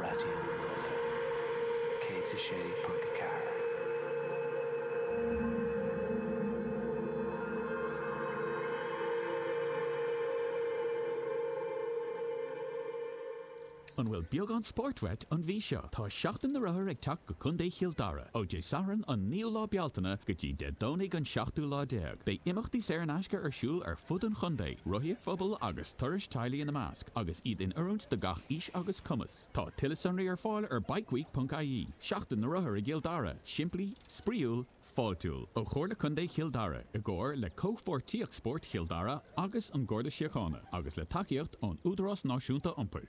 Raidió na Life 106.4. An bhfuil beagán spóirt uait an mhí seo? Tá Seachtain na Rothar ag teacht go Contae Chill Dara! Ó Dé Sathairn an 9ú lá Bealtaine go dtí Dé Domhnaigh an 7ú lá déag, beidh imeachtaí saor in aisce ar siúl ar fud an chontae, rothaíocht phobail agus. turais teaghlaigh ina measc, agus iad in oiriúint do gach aois agus cumas. Tá tuilleadh sonraí ar fáil ar bikeweek.ie. Seachtain na Rothar i gCill Dara, Simplí, Spraíúil, Fáiltiúil. Ó Chomhairle Contae Chill Dara, i gcomhar le Comhpháirtíocht Spóirt Chill Dara agus an Garda Síochána, agus le tacaíocht ón Údarás Náisiúnta Iompair.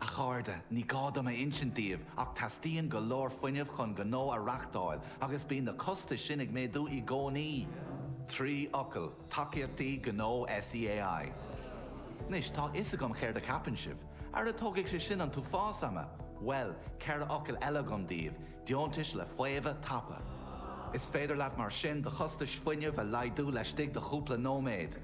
A chairde, ní gá dom a insint daoibh ach teastaíonn go leor fuinnimh chun gnó a reachtáil agus bíonn na costais sin ag méadú i gcónaí! Trí fhocal, Tacaíochtaí Gnó SEAI. Anois, tá a fhios agam céard a cheapann sibh. Ara tógfaidh sé sin an t-uafás ama! Bhuel, ceithre fhocal eile agam daoibh, Deontais le Faomhadh Tapa. Is féidir leat mar sin do chostais fuinnimh a laghdú laistigh de chúpla nóiméad.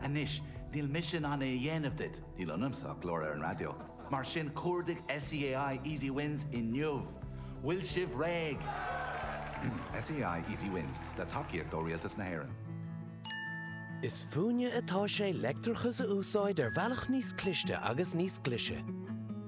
Anois, níl mise in ann é a dhéanamh duit, níl ionamsa ach glór ar an raidió, mar sin cuardaigh SEAI Easy Wins inniu! Bhfuil sibh réidh? SEAI Easy Wins, le tacaíocht ó Rialtas na hÉireann. Is fúinne atá sé leictreachas a úsáid ar bhealach níos cliste agus níos glise.